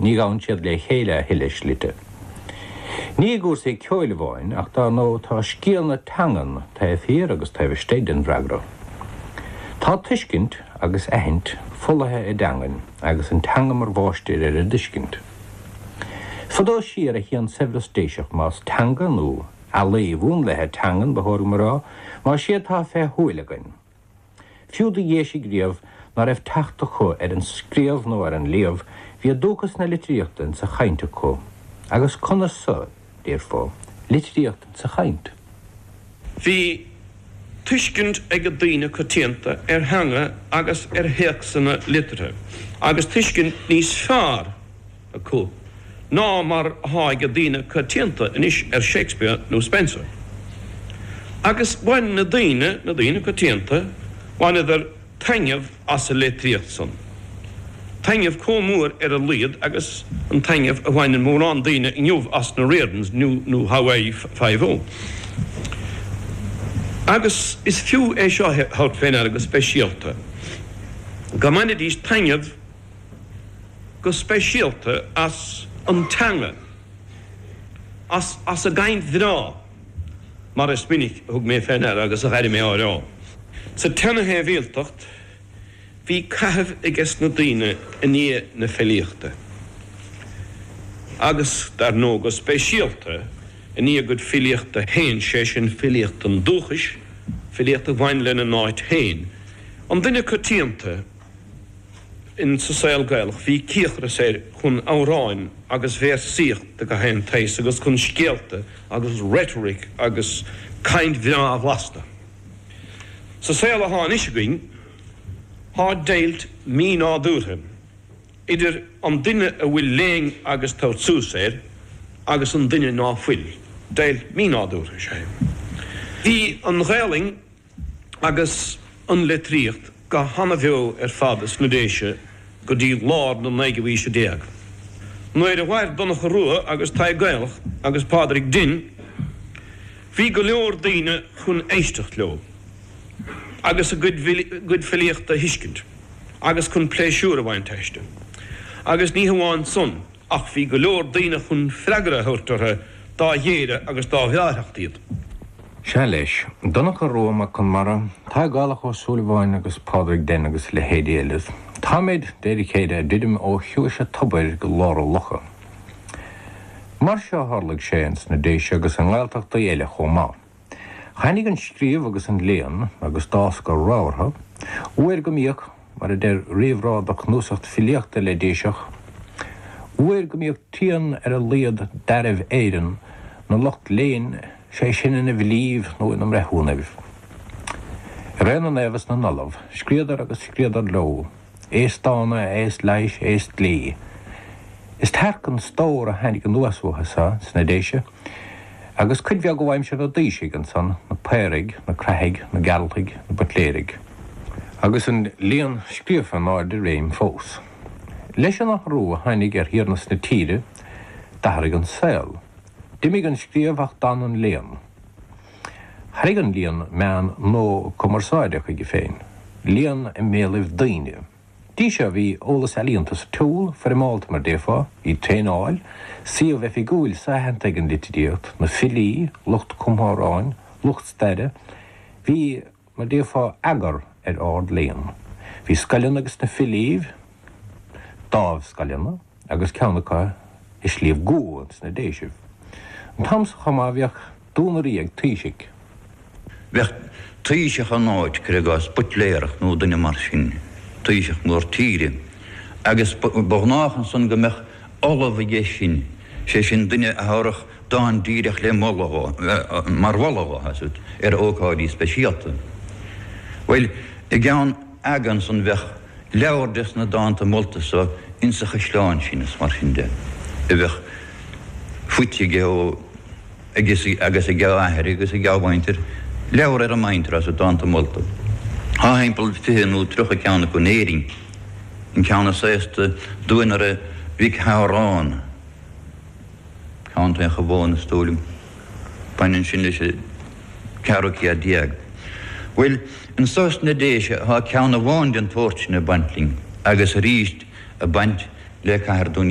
Ní ghabhann siad le chéile a thuilleadh slite. Ní i gcúrsaí ceoil amháin ach dár ndóigh tá scéal na teangan taobh thiar agus taobh istigh den bhfreagra. Tá tuiscint, agus aithint, folaithe i dteangain agus an teanga mar mháistir ar an dtuiscint. Fadó siar a théann saibhreas Déiseach más teanga nó ealaín mhúnlaithe teangan ba chóir dom a rá, más é atá fé shúil againn. Fiú do Dhéisigh riamh ná raibh teacht acu ar an scríobh nó ar an léamh bhí dúchas na litríochta in sa chaint acu. Agus conas san, déarfá, litríocht in sa chaint? Bhí tuiscint ag daoine coitianta ar theanga agus ar théacsanna liteartha, agus tuiscint níos fearr, acu ná mar atá ag daoine coitianta anois ar Shakespeare nó Spenser. Agus bhain na daoine, na daoine coitianta, bhaineadar taitneamh as an litríocht san. Taitneamh comh mór ar a laghad agus an taitneamh a bhaineann mórán daoine inniu as na Riordans nó nó Hawaii Five-O. Agus is fiú é seo a thabhairt fé ndeara go speisialta, go mbainidís taitneamh, go speisialta as an teanga, as, as an gcaint bhreá, mar is minic a thug mé fé ndeara agus a dh'airigh mé á rá. Sa tseana-shibhialtacht bhí caitheamh aige sna daoine i ndiaidh na filíochta, agus dar ndóigh go speisialta i ndiaidh a gcuid filíochta féin, sé sin filíocht an dúchais, filíocht a bhain lena n-áit féin, an duine coitianta. in sa saol Gaelach bhí cíocras air chun amhráin agus véarsaíocht de gach aon tsaghas agus chun scéalta agus rhetoric agus caint bhreá bhlasta. Sa saol athá anois againn thá deighilt mí-nádúrtha idir an duine a bhfuil léann agus tabhairt suas air agus an duine ná fuil. Deighilt mí-nádúrtha sé. Bhí an Ghaelainn agus an litríocht go hana-bheo ar fad sna Déise go dtí lár na naoú aoise déag, nuair a mhair Donncha Rua agus Tadhg Gaelach agus Pádraig Denn. Bhí go leor daoine chun éisteacht leo agus a gcuid filíochta a thuiscint agus chun pléisiúr a bhaint aisti, agus ní hamháin san ach bhí go leor daoine chun freagra a thabhairt orthu. dá ghéire agus dá bhreáthacht iad. Sea, leis. Donncha Rua Mac Conmara, Tadhg Gaelach Ó Súilleabháin agus Pádraig Denn agus leithéidí eile. Táimid, David Quaid, ag druidim ó chiumhais a' tobair go lár a' locha. Mar seo a tharlaigh sé ins na Déise agus i nGaeltachtaí eile chomh maith. Tháinig an scríobh agus an léann agus d'fhás go rabhartha, uair go mbíodh, mar a deir réamhrá do chnuasacht filíochta le Déiseach, Uair go mbíodh trian ar a laíod d'fhearaibh Éireann 'na lucht léinn, 'sé sin ina bhfilíbh nó ina mbreithiúnaibh. I ré na naomh is na n-ollamh scríodh agus scríodar leó, aos dána, aos leighis, aos dlí. Is tearc an stór a tháinig anuas uathu so, sna Déise, Agus cuid bheag ó aimsir na dtaoisigh ansan, na Paoraigh, na Craithigh, na Gearaltaigh, na Buitléirigh. Agus an léann scríofa in ardréim fós. Leis an athrú a tháinig ar thiarnas na tíre, d'athraigh an saol. D'imigh an scríobh ach d'fhan an léann. Tharraing an léann meán nua cumarsáide chuige féin, léann i mbéalaibh daoine. dtí seo bhí eolas ealaíonta sa tsiúl, foirmeálta mar déarfá, bhí traenáil, suíomh oifigiúil so-aitheanta ag an litríocht, na filí, lucht cumtha amhráin, lucht staire. Bhí, mar déarfá, eagar ar ard-léann. Bhí scoileanna ages na filíbh, dáimh-scoileanna. agus ceann acu i Sliabh gCua ins na Déisibh. An t-am so chomh maith bhíodh duanairí ag Taoisigh. Bheadh taoiseach in áit, cuir i gcás, Buitléarach nó duine mar sin, taoiseach mór tíre, agus ba ghnách ansan go mbeadh ollamh aige sin, sé sin duine a thabharfadh dán díreach le moladh dhó, mar mholadh dhó, ar ócáidí speisialta. Bhuel, i gceann aga ansan bheadh leabhar des na dánta molta so ins a' chaisleán sin is mar sin de a bheadh faighte aige ó agus ag a athair agus ag a mhuintir leabhar ar an muintir as a dánta molta. Thá thimpeall fiche nó tríocha ceann acu in Éirinn. An ceann is aosta Duanaire Mhic Shamhráin. Contae Chabháin is dóigh liom. Baineann sin leis an ceathrú céad déag. Bhuel, anso sna Déise thá ceann amháin den tsórt sin ag baint linn, agus arís ag baint le Cathair Dún